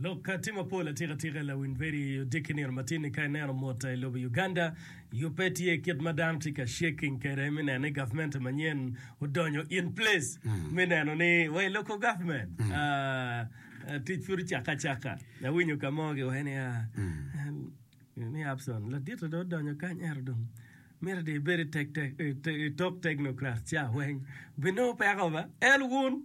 Lok ka tye mapol atikatika, lawiny bedo i odiki nino matin-ni ka ineno mwota i lobo Uganda yubbe tye kit ma dano tye ka shaking kwede me neno ni gavmente manyen odonyo in place me neno ni wai local government tic pud ocakke acaka. Awinyo ka mo giwaco niya ni Abson ladite dong odonyo kany ento dong miti dong ibed i tok technocrat ca weng binongo peko ba el wun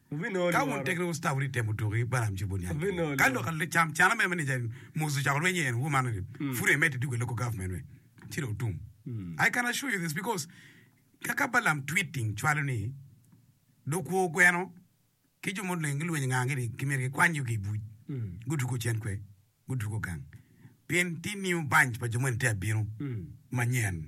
Ka wun tekere wu sita wudito temo tuko ki Balaam ci wubol niang gin ni. Ka lok can can amene ma ni jai Musa ocako lweny iye ni wun man pud emedde dwogo i local government me ci dong otum. I can assure you this because ka ka Balaam tweeting cwalo ni dong kwo gweno ki jo muleng gilweny inga gi ni kimyero gikwany yugi i buc gutugo cen kwe gutugo gang pien tye new bunch pa jo moni tye abino manyen.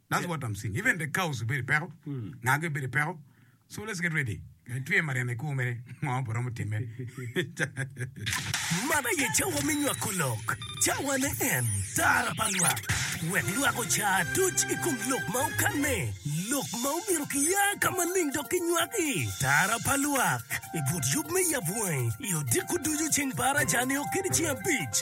That's what I'm seeing. Even the cows bedo peko. Ngage bedo peko. So let's get ready. Me twe mariana iku mere ngo pe romo timme. Man aye cawa me nywako lok, cawane en tara pa lwak, wek lwak oca atuc i kom lok ma okanne, lok ma omyero kiya ka maleng dok kinywak i tara pa lwak i but yub me yab wangi i odiko ducu ceng par aca nio kede ceng abic.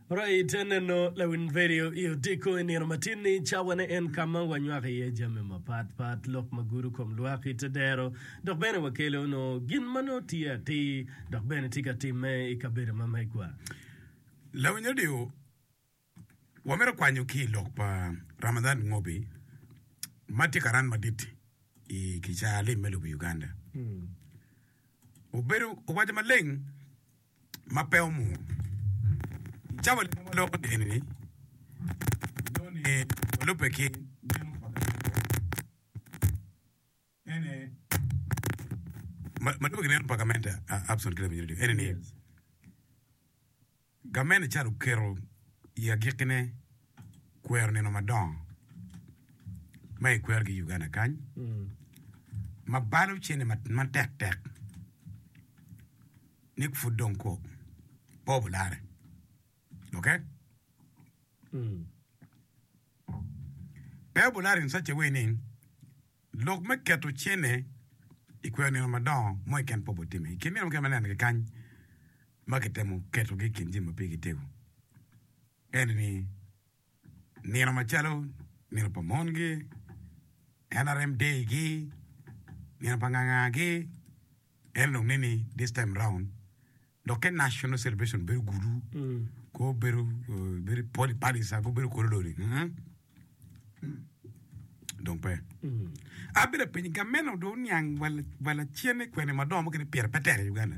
Rayi te neno lawiny redio i Odiko i nino matin-ni. Cawane en ka ma wanywako iye jami mapat pat, lok ma gudo kom lwak i te dero, dok bene wakelo onongo gin ma nongo tye atir dok bene tye ka timme i kabedo ma megwa. Lawiny redio, wamito kwanyo ki i lok pa Ramadhan Ngobi ma tye ka ran madit i kicaa lim me lobo Uganda. Obedo owaco maleng ma pe omur. Cawa leb ma loko dini-ni joni olubbe ki geno pa gamente ene ni, gamente ca oketo i agikkine kwero nino madongo ma ekwero ki i Uganda kany ma balo cente matek tek. Nick pud dong kwo pe obularre. Ok? Mm. Pe obularre in such a way ni lok me keto cene i kweyo nino madongo mo i ken pe obutimme. I kin nino mukene ma neno kikany ma kitemo ketogi i kin jami ma pigi tego, ene ni nino macalo nino pa mongi, NRM day gi, nino pa nganga gi, en dong neni this time round dokke national celebration bedo gudu ko bedo bedo poli palisa ko bedo kolo lori mm. dong pe abedo piny gameno do niang wala cene kwene madongo kene pire pe tek i Uganda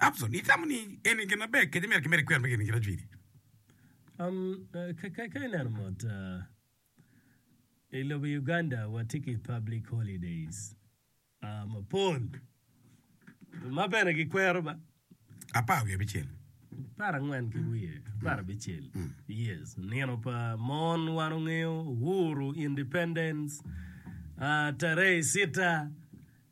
Abson, itamo ni eni gin maber kadi mere ki mere ikwero me geni girajuiti? Um, ka, ka, ka ineno mot, uh, i lobo Uganda watye ki public holidays uh, mapol ma bene gikwero ba. Apar wiye abicel. Apar angwen ki wiye apar abicel. Yes, nino pa mon wan ongeyo Uhuru, Independence, uh, tarehe sita,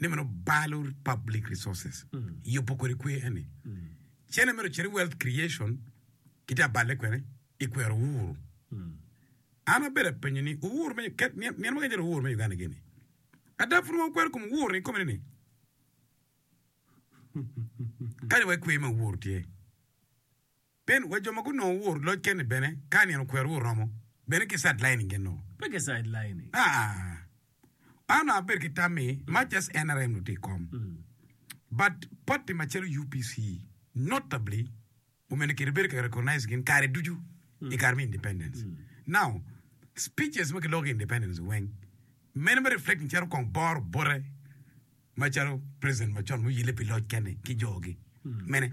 ne meno balo public resources yubo kodi kwer eni cene mere ocito i wealth creation ki tye abale kwene i kwero uhuru an abedo apenyo ni uhuru me ket nyen nyen waka calo uhuru me Uganda gini ada pud wakwero kom uhuru ni kome ni kanya wa i kwer ma uhuru tye Pien wa jo ma gunongo wor loc keni bene, ka nino okwerowa oromo, bene ki sideline genno. Pe ki sideline. Aa, an onongo abedo ki tam ni much as nrm dong tye i kom, but party macalo UPC, notably omene kite bedo ka recognize gin kare ducu i kare me independence. Now, speeches ma kiloko ki independence weng, meno me reflecting calo kong boro bote macalo president macon muyelle pi loc keni ki jo gi. Mene.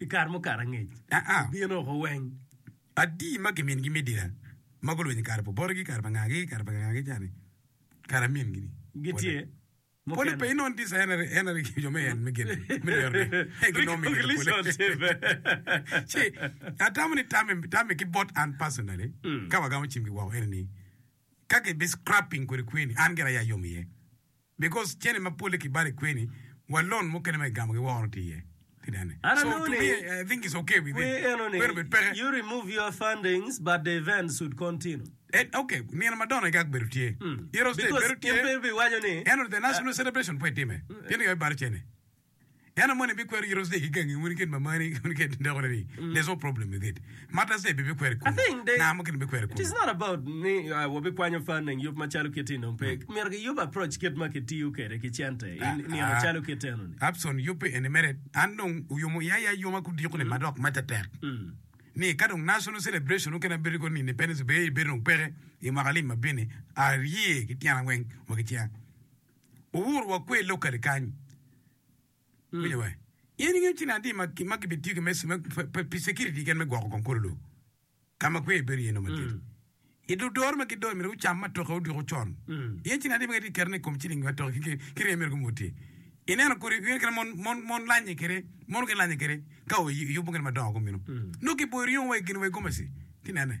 i kare mukato angec. Gin oko weng adi ma gimingi me dira ma gulwiny i kare pa obotigi, kare pa ngagi, kare pa ngagi cani, kare amingi ni? Gitye. Pole pe inongo tye ca en aye ki jo me en me gin me lerone. En gin nongo mingi ka pole. Ci atamo ni tame tame ki bot an personally ka wagamo cimgi woko ene ni ka kibi scrapping kodi kweni an gire aye ayom iye. Because cene mapolle ki balo i kweni wa loan mukene ma igamo gi woro tye iye. I don't know ni kwi eno ni you remove your fundings but the event should continue. Okay nino ma dono igag bedo tye because in pe ibiwaco ni. Eno the national celebration pe itime pienni yao ibalo cene. Dano moni bikwero yito cer ki gangi moni kit mamani moni kit dako ni there's no problem with it. Matta cer pe bikwero i kunu. Ngaa mukene bikwero i kunu. It is not about ni wabikwanyo funding yub macalo kit eni dong pe. Myero ki yub approach kit ma ki tiyo kede ki cente i nino calo kit eno ni. Abson yub pi eni mere an dong oyomo iya ya yoma ku diko ni madok matta tek ni ka dong national celebration mukene abedo ko ni independence day bedo dong peke i mwaka lim ma bini arye ki tyena weng wa ki cinga. Wuwur wa kwer locally kany. Winyo wa. In ingeyo cin adi ma ki ma kibitiyo ki me si- me- pe- pe- pi security keken me gwoko kong kolo lobo. Ka ma kwer bedo iye no madit. I dul doro ma gidoyo myero wucam ma toke odiko con. Ingeyo cin adi ma kiti keto ni kom ciling ma toke ki- ki ki rye myero gumur tye. Ineno kodi ingeyo kit ma mon mon mon lanye kede mon gilanye kede ka oy- oyubo gin madongo gumino. Nongo kiboyo ryeyo wa i gin wa i gomaci. Ti nene.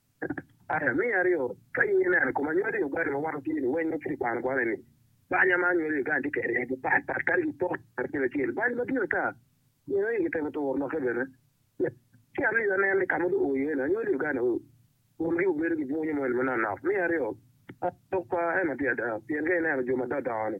Aya me aryo, Ka in ineno kom anywali i ogati ma wang tye niweng ma pud ikwano kwone ni, Banya ma anywali i Uganda tye kede aye gipat pat kadi gipot acel acel. Bany madit ata nino ni kitemo turo lokke bene. Ci aryo, Aneno ni ka ma dong oo iye ni anywali i Uganda aye komgi obedo ki bwunyo moni manok nok. Me aryo, Lok pa eno tye ada pien ka ineno jo ma dongo dongo ni,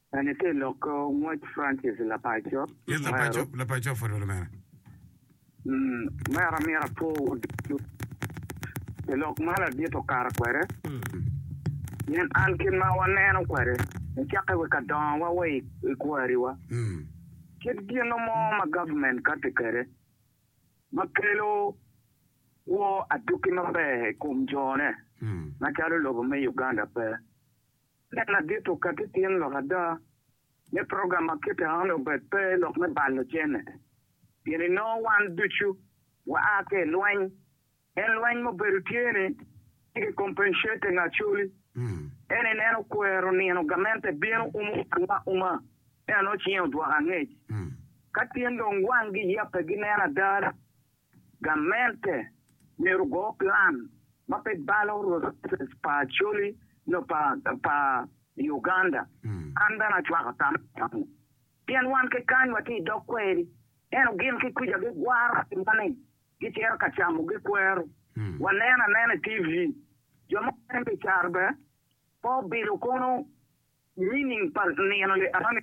Bene te lokke ngwec Francis Lapaco mero. Lapaco pwod bedo mene? Mero amito apor wa ducu pi lok ma ladit okato kwede pien an kit ma waneno kwede nicakke wa ka dongo wa wa i kwari wa kit gino mo ma government kati kwede ma kelo kwo aduki maber i kom jo ne macalo lobo me Uganda pe Tek madit okati tyen lok ada me program ma kite enoni obed pe lok me balo jami, pien inongo wan ducu waa ki i lweny. En lweny mubedo tye ni tye ki compensating Acholi en in en okwero nino gamente bino umo wanwa uma eno cinge odwoko angec. Ka tyen dong wangi yape gineno ada ni Gamente myero ogo plan ma pe balo resources pa Acholi nyo pa pa Uganda. An bene acwako tam meno pien wan ki kany watye i dog kweri eno gin ki kuca gigwaro piwa ni gicito ka camo gikwero waneno anena i TV jo mukene me caro bene pe obilo kunu. Nining pa nino li arami?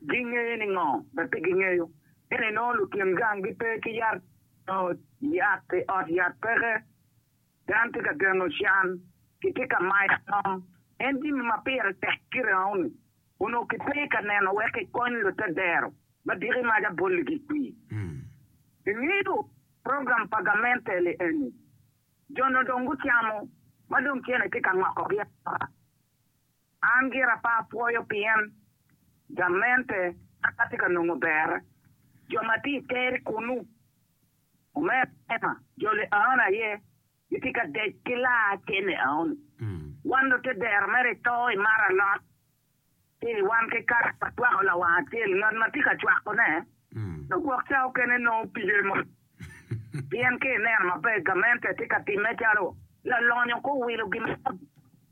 Gingeye ni ngo? Be pe gingeyo. Pien inongo lutyen gang gi pe ki yat nyo yat i ot yat peke. Dan tye ka geno can, ki tye ka mayo ngom. En jimi ma pire tek ki rengoni onongo ki pe ka neno wek ki kony lute dero ma diki mac aboli gi kwi. Ingeyo program pa gamente li eni? Jone dong gucamo ma dong cene tye ka ngokogi angoka. An gira pe apwoyo pien gamente pe tye ka nongo ber. Jo ma tye i ter kunnu, omera Emma, joli Aon aye gitye ka dec ki laa cene Aon. Wan lute dero mere i to i mar alot ci wan ki kare watwako lawang acel ngat ma tye ka cwakone dok gwok ca okene nongo pige mo Pien ka ineno maber gamente tye ka timme calo lalonyo ka owilo gin mo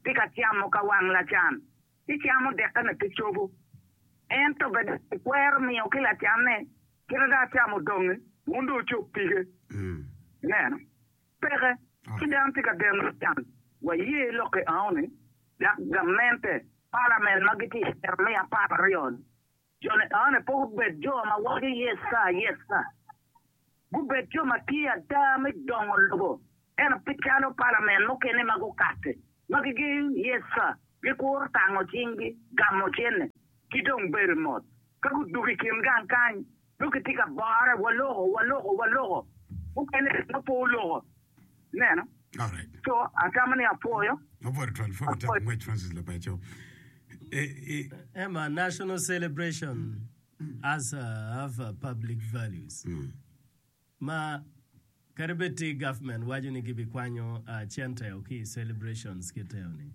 tye ka camo ka wang lacan, ci camo dekkene ki cobo. Ento bed ni ikwero miyo ki lacanne kite dok camo donge wun dong wucob pige? Ineno? Peke! Ci dano tye ka deno lacan. Waye lokke aoni, dok gamente, palament, ma gitye i Jeremia apar aryo-ni, Jo Licawone pe gubed jo ma waco Yes sir, Yes sir. Gubed jo ma tye ada me dongo lobo, ento pe calo palamen mukene ma gukatti, ma gigeyo Yes sir, gikuro tango cinggi, gamo cente, ki dong bedo mot. Ka gudwogo i kin gang kany, dong gitye ka bore, Waloko, waloko, waloko. Mukene dong pe oloko. Ineno? So, atamo ni apwoyo. Emma, National Celebration as of Public Values. Ma kadi bed ti government waco ni gibikwanyo centeo ki i celebrations kiteo-ni,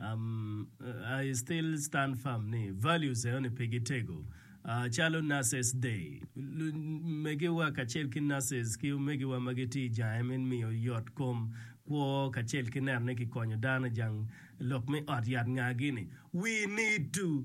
I still stand firm ni values enoni pe gitego. Calo Nurses Day, megiwa kacel ki nurses ki omegiwa ma gitye i jange me miyo yot kom kwo kacel ki neno ni kikonyo dano i jang lok me ot yat ngagi ni, We need to.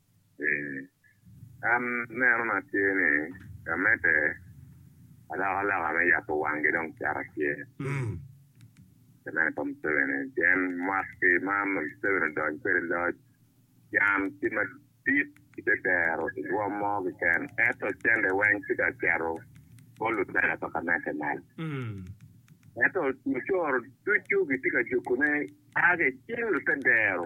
An nenona tye ni ka medde alokaloka me yabo wangi dong cito tye. Pi meno pa Museveni pien mwaki ki ma Museveni odony kwede i loc can tye madit i te dero i rwom mo keken ento cente weng tye ka cito bot lutela pa Kameke mal ento mucoro ducu gitye ka jukune a ki i cing lute dero.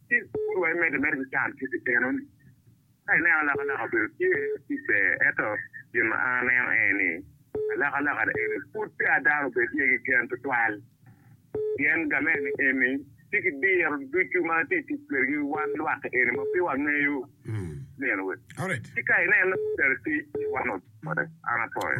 Ci pud wa imedde mere ki can ki pi teno-ni. Ka ineno alakalaka obedo tye ki ber, ento gin ma an aneno aye ni, alakalaka ni eni pud peya dano obed iye ki gen tutwal. Pien gamente eni tye ki diro ducu ma tye tic kwedgi wan lwak eni ma pe wangeyo nino we. Ci ka ineno tere tic ni wan ocote, an apoyo.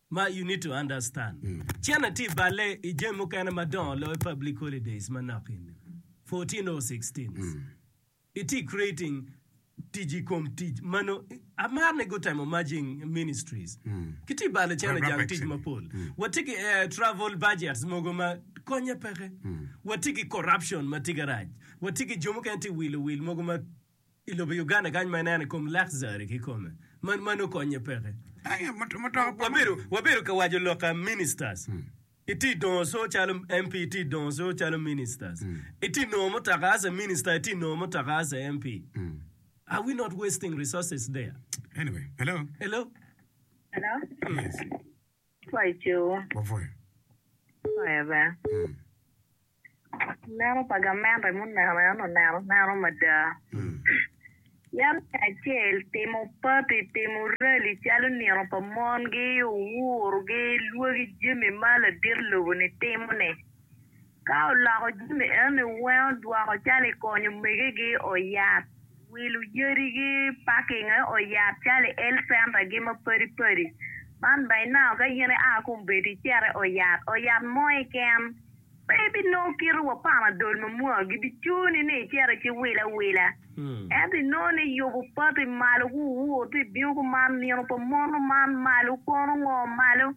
Ma you need to understand cene tye bale i jami mukene madongo loyo public holidays manok eni fourteen or sixteen itye creating tic i kom tic manongo amar ni gutemo merging ministries kitye bale cene jang tic mapol watye ki air travel budgets mogo ma konye peke watye ki corruption matye garac watye ki jo mukene tye wil owil mogo ma I lobo Uganda kany ma ineno i kom luxury kikome man man okonye peke. Wabedo ka waco lok ka ministers iti dongo so calo MP iti dongo so calo ministers iti nongo mutoka as a minister iti nongo mutoka as a MP are we not wasting resources there? Anyway, hello. Hello. Hello. Yes. Paco. Wapwony. Wapwony bene. Leno pa gamente muneno en oneno aneno mada. Yam me acel timo party, timo rally calo nino pa mongi, owurogi, lwagi jami ma ladit lobo-ni timo-ni. Ka oloko jami enoni weno dwoko calo i konyo omegegi oyab, wilo yadigi, parking e oyab calo i health center gi ma padi padi. Man by now ka in i aa kong bedo icete oyab oyab mo keken pe ibinongo kite wa panadol mamua gibicuni ni icete ci wile awila. Ento i nongo ni yubu pati malo gu wur ti bingo gu man nino pa mono man malo kono ngo malo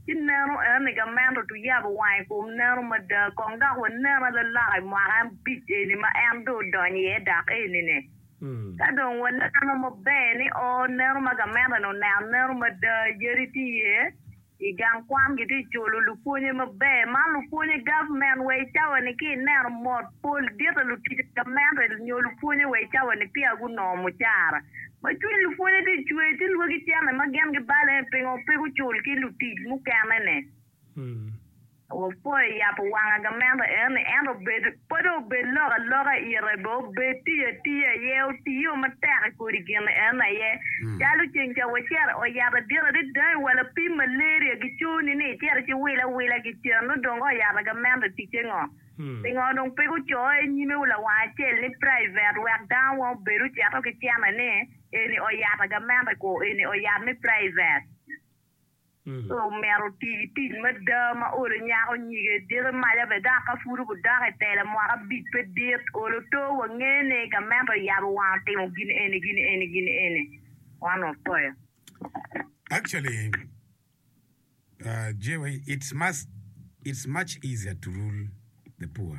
ci neno eno ni gament otu yabo wang i kom neno mada kong dok wa nena lalaka i mwaka abic eni ma en dong odonyo iye dak eni ni ka dong wa neno maber ni oo neno ma gamente ni oneno neno mada yadi ti iye I gang kwan gitye ka culo lupwonye maber. Man lupwonye gavment wa i cawa-ni ka ineno mot pol dit pa lutic gamente nyo lupwonye wa i cawa-ni peya gunongo mucara. Ma cwiny lupwonye tye ka cwer ci lwaki cente ma gin gibale pingo pe gucul ki lutic mukene-ni. Wapwoyo yabo wang agamenda enoni, ento bed pwod obed lok aloka ite be obed tiyo atiya aye, otiyo matek i kodi gin enoni aye. Calo ceng ca wacito oyabo adiro adada i wa lapim malaria giconi ni icito ci wilo awila gicen nongo dong ka oyabo agamenda ticce ngo? Pingo dong pe gucoyo i nyime wa lawang acel ni private wek dano weng obed ocito ki cene ni eni oyabo agamenda kwo eni oyab me private. Omyero oti ki tic mada ma olo nyako nyige dito maca bed dok ka pud gudok i tela mwaka abic pe dit, olo oto wa nge ni gamente oyabo wang otimo gin eni gin eni gin eni wan wapoyo. Actually Jewy it's much easier to rule the poor.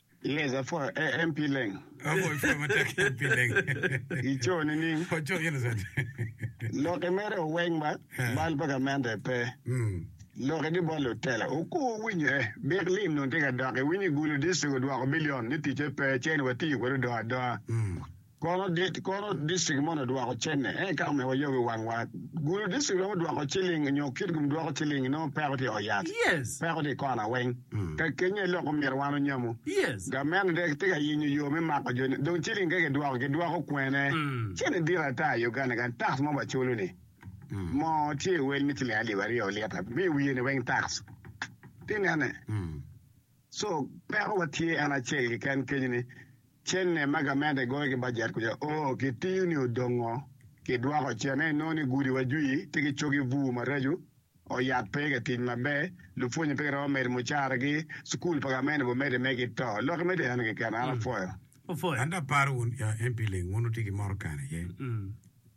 Yes, apwoyo MP Leng. Apwoyo pwoyo matek MP Leng. I co nining? Pwoyo co innocent. Lok i mere oweng ma eh. bal pa gamente pe. Mm. Lok i di bot lutela oku owinyo eh. Bik lim nung tye ka dok iwinyo i gulu distrik odwoko bilion ni ticce pe cen wati kwede odoa adoa. Mm. Kono dit kono distrik moni odwoko cene eka omiyo wayog i wangwa. Gulu distrik romo dwoko ciling nyo kit gum dwoko ciling inongo peko tye i ot yat, peko tye i kona weng. Ka kenyo aye lok omyero wan onyamu. Gamente dong tye ka yenyo yo me mako jo ni. Dong ciling keke idwoko gidwoko kwene? Cene dit ata i Uganda kany tax ma waculo ni moo tye i wel me ciling alip aryo lita me wiye ni weng tax. Tinene. Co, Pekowa tye en acel keken kenyo ni, cene ma gament egoyo ki bajet kwica o ki tiyo ni odong ngo? Ki dwoko cene inongo ni gudi wa jwi tye ki cogi bur maraco, ot yat pe ka tic maber, lupwonye pe giromo medo mucara gi, cukul pa gament obo mede me ki to. Loki me deno keken an apwoyo. An dong aparo wun MP Leng wun wutye ki moro kany aye.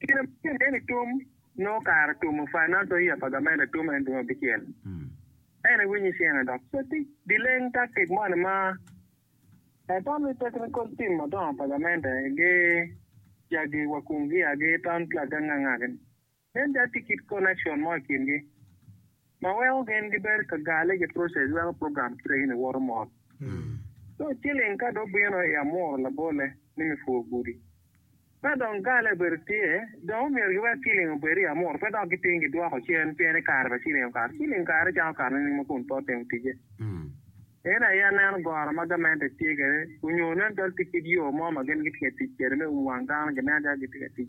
Kine ma King David tum, nongo kare tumo Fernando Ia pa Gamente atum en dwe abicel. En i winyi cene dok coti di leng taktik moni ma Atan ni Technical Team madongo pa Gamente gi jagi wa kung gia gi Town Clerk gangangagi ni. Nen da tye kit connection mo i kingi ma weko gin gibedo ka gale ki process weko program kite eni woto mot. So chilling ka dong bino i amuro labole ni me pur gudi, ka dong gale obedo tye, dong omyero giwek chilling obed i amuro pe dok giting gidwoko cen pien i kare pa chilling okato. Chilling kare cako kato nining ma kun pe otimo ticce? Eni aye aneno goro ma gamente tye kwede, onyo nen calo tye kit yo mo ma gin gitye ka tic kwede me um wang dano, ginen calo gitye ka tic.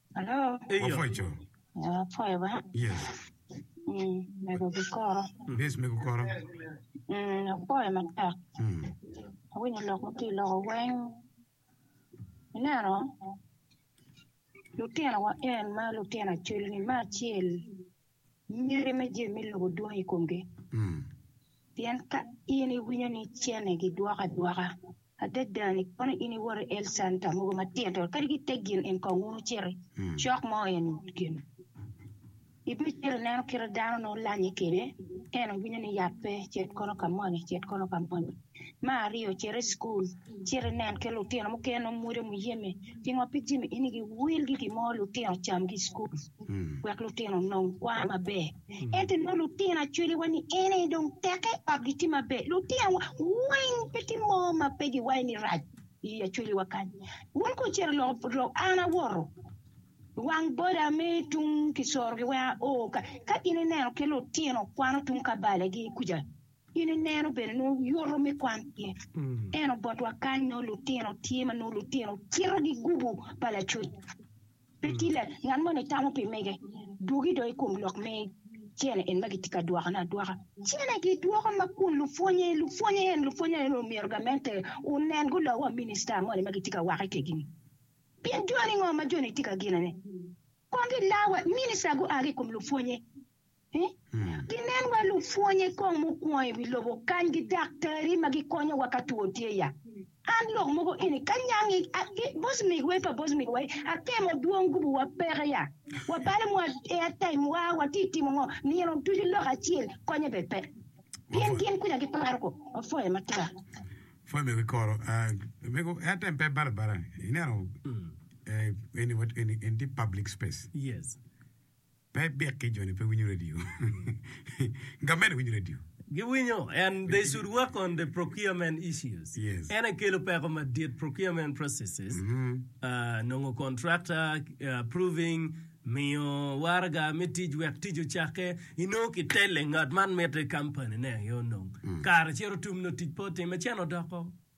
Alo. Wapwoco. Wapwoyo ba. Yes. Mm, mego gikoro. Yes, mego koro. Mm, apwoyo matek. Mm. Awinyo lok ma tye loko weng. Ineno, lutinowa en ma lutino acul-ni ma acel Myero imi jami me lobo dwong i komgi. Pien ka in iwinyo ni cene gidwoko adwoka, adada-ni kono in iwoto i Elsan ka mogo matino-to, kadi ki i te gin en kong wun wuciti cok mo en gin. Ibicito ineno kite dano nongo lanyi kwede, en owinyo ni yat pe, cit kono ka moni, cit kono ka moni. Me aryo cit i cukul cit inen ki lutino mukene nongo mwode muyeme pingo pe ijemi in igi wil ki gimo lutino cam ki cukul wek lutino onong kwano maber ento inongo lutino acwali wa ni ene dong tek i ot gitye maber lutino wa weng pe tye mo ma pe giwayo ni rac i acwali wa kany wun ku cit iloko lok an awoto wang boda me tung kisoro gi weng ao ka in ineno ki lutino kwano tung kabale gi kuca In ineno bene nongo yoto me kwan pien eno botwa kany nongo lutino tye ma nongo lutino cito gigubo pa lacuc. Pe tye la ngat moni tamo pi mege duogi do i kom lok me cene en ma gitye ka dwokone adwoka. Cene gidwoko ma kun lupwonye lupwonye en lupwonye en omyero gamente onen gulo wa minista moni ma gitye ka wake kegini. Pien joni ngo ma joni tye ka ginone. Kong gila wa minista gua ki i kom lupwonye. Ginen wa lupwonye kong mukwongo i wi lobo kany gi daktari ma gikonyo wa ka two tye ya. An lok mogo eni ka nyangi gi bosmig wa pa bosmig wa atemo dwong gubu wa peke ya. Wa bale mwa air time wa wa ti timo ngo nino ducu lok acel konye be pe. Pien gin kuja gi paro ko wa foye ma tar. Foye me gi koro mego air time pe bala bala ineno eni eni eni ti public space. Pe ibiki joni pe winyo radio. Nga mene winyo radio? Gi winyo and they should work on the procurement issues. Yes. En aye kelo peko madit procurement processes, ah, nongo contractor, ah, approving, miyo waraga me tic wek tic ocakke, inongo ki tele ngat man mite company ne aye onong. Kare cito tum nongo tic pe otimme cen odoko.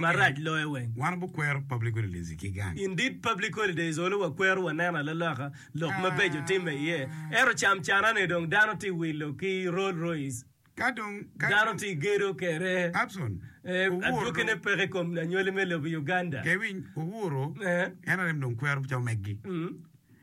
marac loyo weng. In dit public holidays olo wakwero waneno alaloka lok mabeco timme iye ento cam cana ne dong dano tye wilo ki Rolls Royce dano tye gedo kede adwoki ne peke ikom anywali me lobo Uganda.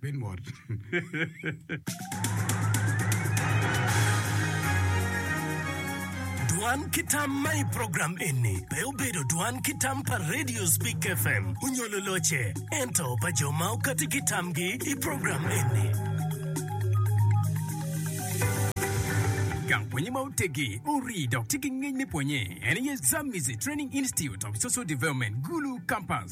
Bed mot-Dwan ki tam ma i program eni pe obedo dwan ki tam pa Radio Speak FM onyo luloce, ento pa jo ma okati ki tamgi i program eni. Gang pwonye ma otegi, orii dok tye ki ngec me pwonye en aye Zamizi Training Institute of Social Development, Gulu Campus.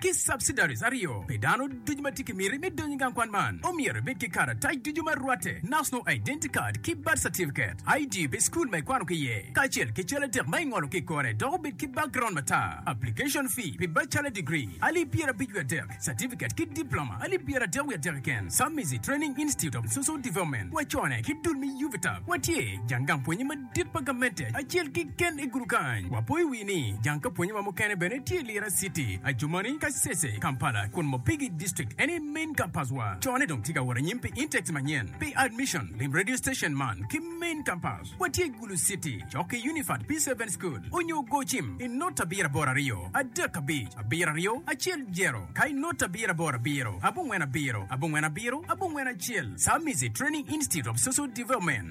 ki subsidiaries aryo pi dano ducu ma tye ki miti me donyo i gang kwan man omyero ibed ki karatac ducu ma rwatte, National Identity Card ki Birth Certificate, ID pi school ma ikwano ki iye, kacel ki cal adek ma ingolo ki i kore dok obed ki background matar. Application fee pi bachelor degree, alip pyerabic wiye adek, certificate ki diploma, alip pyeradek wiye adek keken, Submizi Training Institute of Social Development, wacone ki dul me UVTAB, watye jang gang pwonye madit. Tit pa gamente acel kiken i gudu kany. Wapo i wi ni jang ka pwonye wa mukene bene tye i Lira city, Adjumani, Kasese, Kampala, kun Mopigi district eni main campus wa. Cone dong tye ka wot anyim pi intakes manyen pi admission. Lim radio station man ki main campus wa tye Gulu city cok ki Unified P seven school onyo go cim i not abiro aboro aryo adek abic abiro aryo acel jero ka i not abiro aboro abiro abongwen abiro abongwen abiro abongwen acel Samizi training institute of social development.